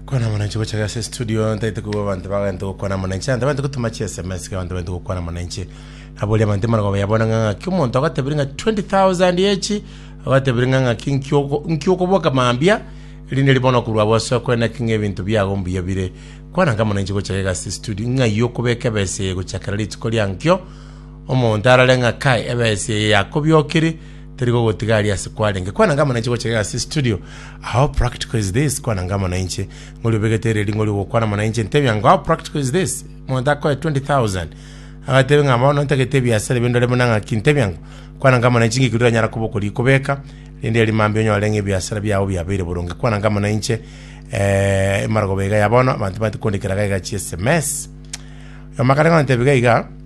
kwana mwananchi gocha gase studio ntaite kugwa abanto bagente gokwana mwananchi ante bante gotuma chi sms ke abanto bante gokwana mwananchi abori abanto imana goba yabona ng'a ng'aki omonto agatebiri ng'a 20000 echi agatebiri ng'a ng'aki nkioko- nkiokoboka mambia erinde ribono korwa abo ase okweneki ng'a ebinto biago mbuya bire kwana nka mwananchi gocha gase studio ng'ai okobeka ebesa eye gochakera rituko riankio omonto arare ng'a kai ebesa eye yakobiokire Teri kogotiga aria ase kwarenge kwana ngama nainche gocha iga ase studio. How practical is this? Kwana ngama nainche. Ngori obegete ere ringori ogokwana amo nainche ntebia ngo how practical is this? Monto akoe 20,000. Agatebe ng'a bono ntagete ebiasara ebi ndore buna ng'aki ntebia ngo kwana ngama nainche ng'iki riranyara koba okori kobeka rende eri mambia onyore ng'a ebiasara biao biabeire boronge kwana ngama nainche eh, emaragoba iga ya bono abanto bati kondikera gaiga chi sms. Omakare ng'o ntebia iga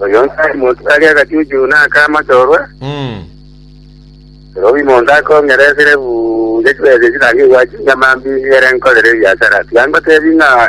Oyo onde ari monto tari agachuchu na aka amachorwa, Mm. robi monto akong'eresire buya chibesa echi naende egwachi nyamambi ere nkorere ebiasara. Tiga ngotebi ng'a